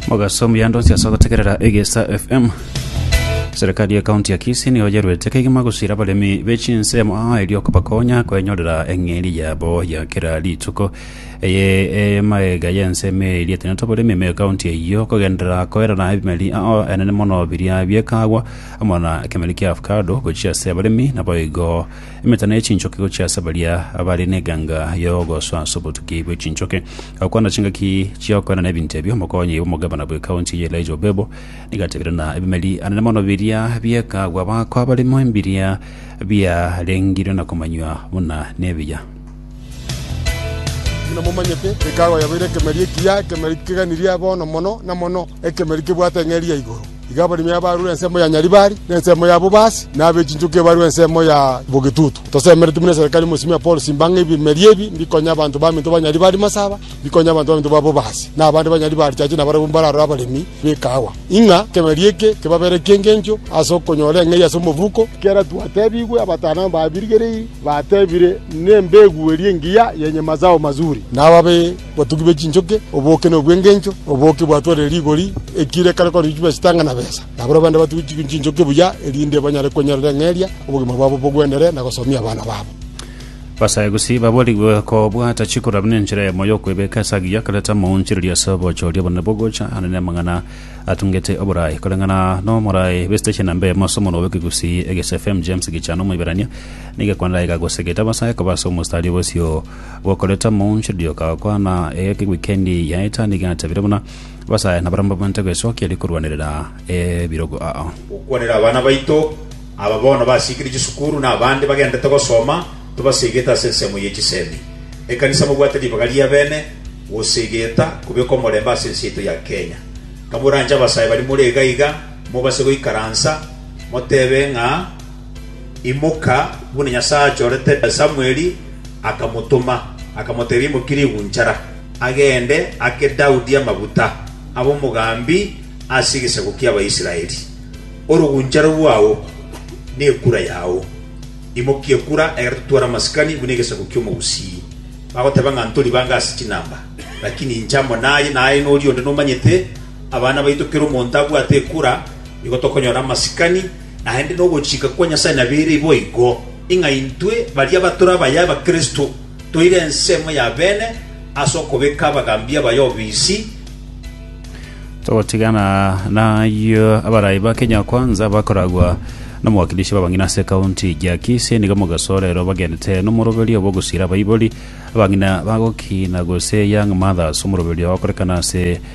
Mogaso omuya ndonsi ase ogotegerera Egesa FM. Serikali ya kaunti ya Kisii niyo yerwete kegima gusira abaremi b'echinsemo aa erio kobakonya kwenyorera eng'eria yabo ya kera rituko. Eye emaega y'ensemo erietene toboremi ime kaunti eyio kogenderera koerera ebimeri aa enene mono biria biekagwa amo na kemeri kia avocado gochia ase abaremi naboigo emetano y'echinchoki gochia ase baria abare n'eganga y'ogosoa ase obotuki bw'echinchoki. Gokwana chingaki chi'okoenana ebinto ebio, omokonyi bw'omogabana bw'ekaunti ya Elijah Obebo nigo atebire ng'a ebimeri anene mono biria bi'ekagwa bakoa barimo mbiria biarengirwe na komanywa buna nebiya. Buna momanyete, ekagwa yabeire ekemeri ekiya, ekemeri keganirie bono mono na mono. Ekemeri kebwate eng'eria ya igoro, iga abaremi abarure ensemo ya Nyaribari, na ensemo ya Bobasi, na abe chinchoki barure ensemo ya Bogetutu. Tosemeretie buna eserekari mosimi ya Paul simba ng'a ebimeri ebi mbikonye abanto baminto ba Nyaribari masaba, mbikonye abanto baminto ba Bobasi, na abande ba Nyaribari chache na barabwo mbararore abaremi b'ekaawa, ing'a ekemeri eke kebabere eki'engencho ase okonyora eng'eria ase omobuko. Kera twatebigwe, abatano ababirigereiri batebire, Nembegu eria engiya yenye mazao mazuri, na ababe. Botugi be chinchoki, oboke na obwengencho, oboke bwatwarire rigori, ekire ekare korwa chichupa chitanga na besa. Nabarabwo abande batugi chinchoki buya, erinde banyare kwenyorera eng'eria, obogima bwabo bogwendere, na gosomia abana babo. Basagusi baborigwe kobwata chikura buna enchera yamo y'okwebeka ase agiya akareta amaonchereri ase obochoria obonene bw'ogocha ande n'amang'ana atungete oboraai. Koreng'ana n'omoraai bw'esiteshi ya namba emo ase omorwa bw'Ekegusii, Eges FM, James Gichana Omoiberania nigo ekwandaeka gose getabasae koba ase omostari bw'esio gokoreta moonchoreria ogakwana ewikendi yaeta, nigo atebirie buna abasae nabarabwo mbabwate gwesokia erio korwanerera ebirogo ao. Gokwanera abana baito, aba bono basiikire chisukuru na abande bagenderete gosoma, tobasegete ase ensemo ye chisemi. Ekanisa mobwate ribaga riabene gosegeta kobeka omorembe ase ense yaito ya Kenya. Kamoranche abasae bari more iga iga, mobase goikaransa, motebe ng'a. Imoka, buna Nyasae achorete Samueli, akamotoma, akamotebia, Imokie rigunchara, agende ake Daudi amaguta abe omogambi ase egesaku ki'Abaisraeli. Orogunchara rwao nekura yao. Imokia ekura, egere totware amasikani buna egesaku ki'omogusii. Bagoteba ng'a ntori bange ase chinamba, lakini inche amo naye, naye noria onde nomanyete. Abana baito kera omonto abwate ekura, nigo tokonyora amasikani. Naende nogochika kwa Nyasae nabeire boigo, ing'a intwe baria batore abayae ba Kristo, toire ensemo ya beene ase okobeka abagambia baye obisi, Togotigana nayio, abarai ba Kenya-Kwanza bakoragwa nomowakilishi b'abang'ina ase ekaunti ya Kisii nigo mogasorero bagenete nomoroberio bw'ogosira abaibori, abang'ina bagokina gose young mothers, omoroberio okorekana ase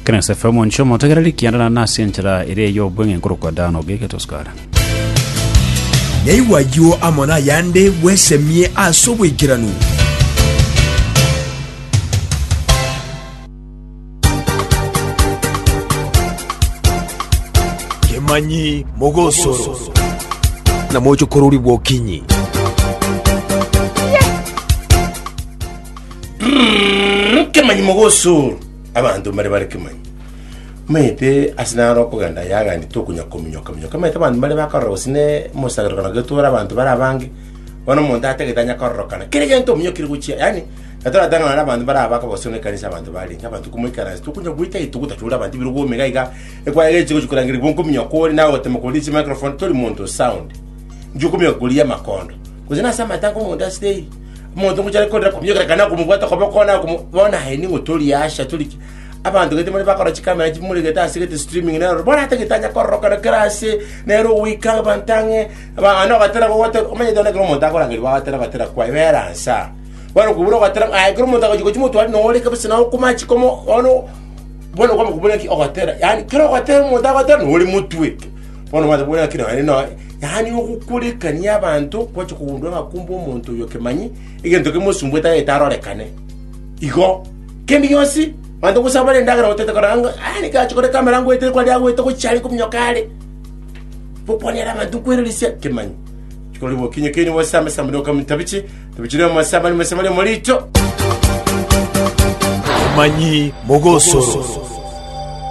Ekero Yosefu omonchie omotegereri, ekianda naende nase enchera ere ey'obweng'e ekorokwa Dan, ogeike Tosukara. Naigwe ayio amo nayande bwesemie ase oboikeranu. Kemanyi mogosoro. Namoche kororigwa okinyi. Kemanyi mogosoro. Abanto mbare bare kemanyi. Maete ase naro okogenda yagaanete okonyakominyoka minyoka. Maete abanto mbare bakorora gose ne mosagerokano getore abanto bare abange. Bono omonto atagete anya kororokana kera egento ominyokire gochia. Yani natoratang'ana na abanto bare abako gose ne ekanisa abanto barenge abanto komoikaransa tokonya goita gete gotachora abanto biro gome iga iga. Ekwaya gechi gochi korangeri bonkominyoka kore nawe gotema koria chimicrophone tori monto sound. Nchi okominyoka koria amakondo. Gose nase amatango omonto asire eyi. Omonto ngochare korera kominyoka kana komobwata kobe okona akomo bona aye ning'o tori asha tori ki. Abanto gete more bakora chikamera chimure gete ase gete streaming nero bona ate gete anya kororokana kera ase nero ogoika abanto ang'e ba ana ogatera gogote omanye tore ekero omonto akorangeria bagatera batera kwaye bera nsa. Bono kobura ogatera aye ekero omonto agochi gochi motware na ore kabisa na okoma chiko omo bono bono kwama kobura ki ogatera yaani kero ogatera omonto agote nore motwe. Bono mwanche kobwata ng'a kera onye noe, yaani ogokurekania abanto gwache kogundwa ng'a kumbe omonto oyo kemanyi egento kemosumbuete tagete arorekane. Igo kende gionsi abanto gose abare endagera gotete kora ng'a "Ah, niki ache koreka amarango etire kwari agoeta ogochia are kominyoka are. Bokwanera abanto nkwererisia kemanyi. Chikori bokinye keri gose amesa mbere okamenya tabichi, tabichi rero amasa abari mesa bari omorito. Obomanyi mogosoro.